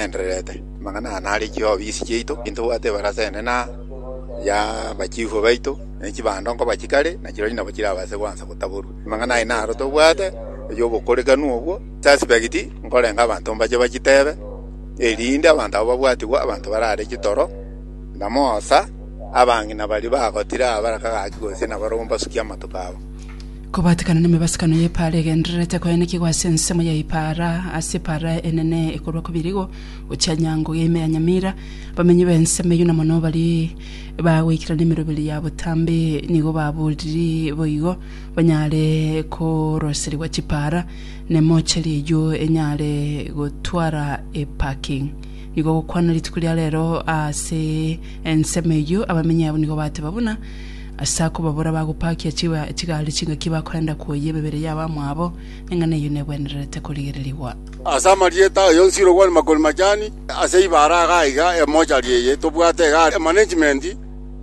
Endererete. Amang'ana aya naro echiofisi chiaito, ntobwate ebarasa enene aa, ya abachifu baito, ne chibando nkoba chikare, na chirorio nabo chirabase goansa gotaborwa. Amang'ana aya naro tobwate, erio obokorekanu obwo, suspect, nkorenge abanto mbache bachitebe, erinde abanto aba babwatigwe abanto barare chitoro, na moosa, abang'ina baria bagotira aa baraka gaki gose nabarabwo mbasukie amatuko abo. Kobatekana nemebasukano y'epaara egendererete koenekigwa ase ensemo y'epaara ase epaara enene ekorwa Kobirigo gochia Nyango geime ya Nyamira, abamenyi b'ensemo eyio na mono baria bagoikera nemeroberi ya botambe nigo baboriri boigo banyare koroserigwa chipaara na emocheri eyio enyare gotwara eparking. Nigo gokwana rituko ria rero ase ensemo eyio abamenyi abo nigo bateba buna Ase ako babora bagopakia chigari chingaki bakorenda koyia emebere yabo amwabo, neng'ana eyio negwenererete korigererigwa. Ase amarieta aye onsi irogwani makori machani ase ibara iga aiga emochari eye tobwate iga are management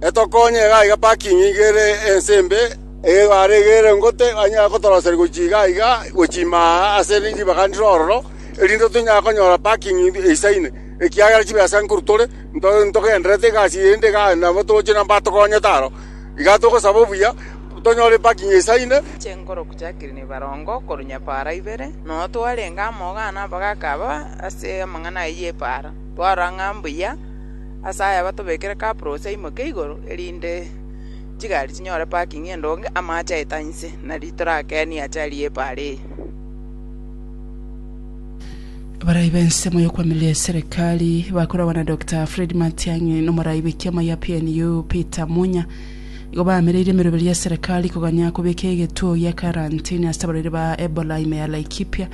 etokonye iga aiga parking iga ere ense embe ebara iga ere ngote anyare kotoroseria gochia iga aiga gochia ime aa ase ribaga ndire ororo erinde tonyare konyora parking eisaine ekiagera chibesa nkuru tore ntogenderete egasi eye inde iga nabo toche na mbatokonyete aro. Iga togosaba obuya, tonyore eparking esaine. Chinguru chia Kirini Barongo korwa Nyapaara ibere, noyo twarenge amo iga nabagaaka aba ase amang'ana ayio y'epaara. Twarora ng'a mbuya ase aya batobekere kaburosi aimoke igoro, erinde chigari chinyore parking endonge, amache aete inse, nari torakenie ache aria y'epaara eye. Abarai b'ensemo y'okwamiria eserekari bakoragwa na Dr Fred Matiang'i na omorai bw'ekiama gia PNU Peter Munya nigo baamereire emeroberi ya serekari koganya kobeka egetuo gia karantini ase abarwaire ba Ebola ime ya Laikipia.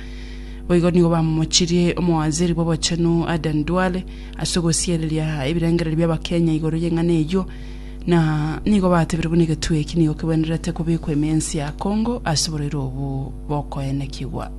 Boigo nigo bamomochirie omowaziri bw'obochenu Aden Duale ase ogosiereria ebirengererio bi'Abakenya igoro y'eng'ana eyio na nigo batebire buna egetuo eki nigo kegwenerete kobekwa ime y'ense ya Congo ase oborwaire obwo bokoenekigwa.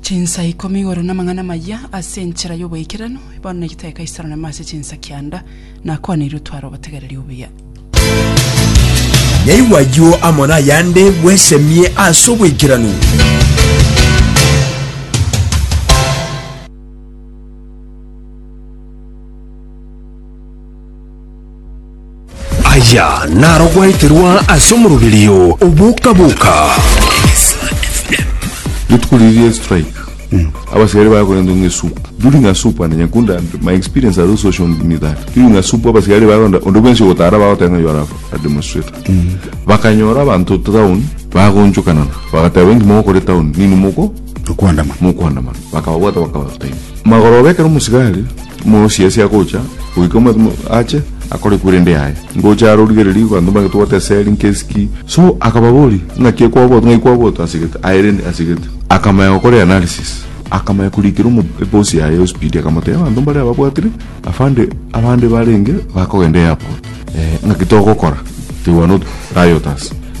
Chinsa ikomi igoro namang'ana amayia ase enchera y'oboikeranu, bono negitae Kaisaro name ase chinsa kianda, nakwaneirwe tware obotegereri obuya. Yaigwa ayio amo nayande bwesemie ase oboikeranu. Aya narogweterwa ase omoroberio oboka-boka. Rituko riria ria strike abasiari bakorenta ng'a esupu during a supu and nyakunda and my experience at those social me that during a supu abasiari bakorenta onde bwensi ogotara bagoteba ng'a you are a demonstrator bakanyora abanto town bagonchokanana bagateba inki mogokora etown nini moko Okwandamana. mokwandamana, bakababwata bakabatainia. Magoroba ekero omosigari omosiasi agocha, goika omwati mo- ache, akore kwerende yaye, ngocha are origererie abanto mbare tobwate esegi nkesi ki. So akababoria, ng'aki ekwabwatwa, ng'ai kwabwatwa asegete, aye rende asegete. Akamanya gokora eanalysis, akamanya korikera omo- ebosi yaye ospeed, akamotebia abanto mbare ababwatire, afande abande barenge bakogenda airport, eh, ng'aki togokora? They were not rioters.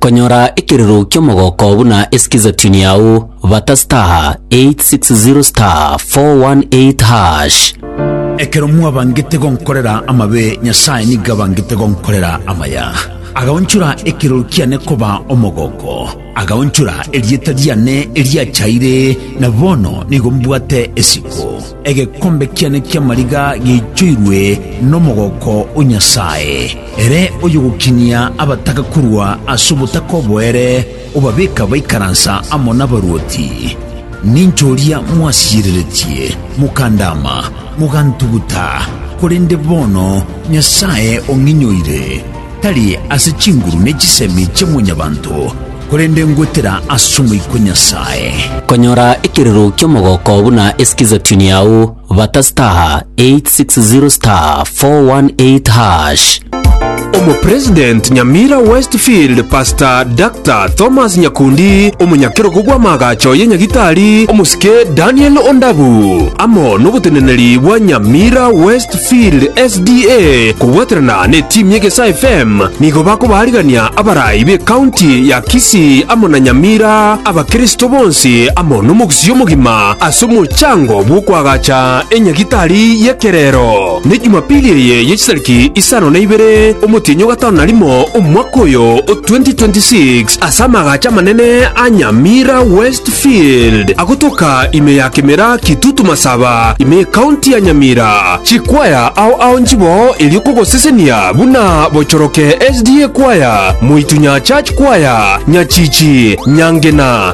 Konyora ekirero ki'omogooko buna esikizatuni yao, bata *860*418#. Ekero mwabangete gonkorera amabe, Nyasae nigo abangete gonkorera amaya. Agaonchora ekirero kiane koba omogooko, agaonchora erieta riane eriachaire, na bono nigo mbwate esiko. Egekombe kiane ki'amariga giaichoirwe nomogooko o Nyasae. Ere oyogokinia abataka korwa ase obotaka oboere obabeka baikaransa amo nabaruoti. Ninche oria mwasiyereretie, mokandaama, mogantuguta, korende bono Nyasae ong'inyoire, tari ase chinguru ne chisemi chia mwanyabanto, korende ngwetera ase omoika o Nyasae. Konyora ekerero ki'omogooko buna esiki zaituni yao. Bata star 860 star 418 hash. Omopresident Nyamira Westfield Pastor Dr. Thomas Nyakundi, omonyakerogo bw'amaagacho ye Nyagitari omosike Daniel Ondabu, amo noboteneneri bwa Nyamira Westfield SDA kobwaterana ne team ye Gesa FM nigo bakobaarigania abarai be county ya Kisii amo na Nyamira abakristo bonsi amo nomogisio Sia omogima ase omochango bw'okoagacha enyagitari y'ekerero, ne Jumapili eye ye chitariki isano na ibere omotienyi o gatano na rimo omwaka oyo o 2026 ase amaagacho amanene a Nyamira West Field agotoka ime ya Kemera Kitutu Masaba ime y'Ekaunti ya Nyamira. Chikwaya ao ao nchiboo erio kogosesenia buna Bochoroke SDA Kwaya, Moitunya Church Kwaya, Nyachichi, Nyangena,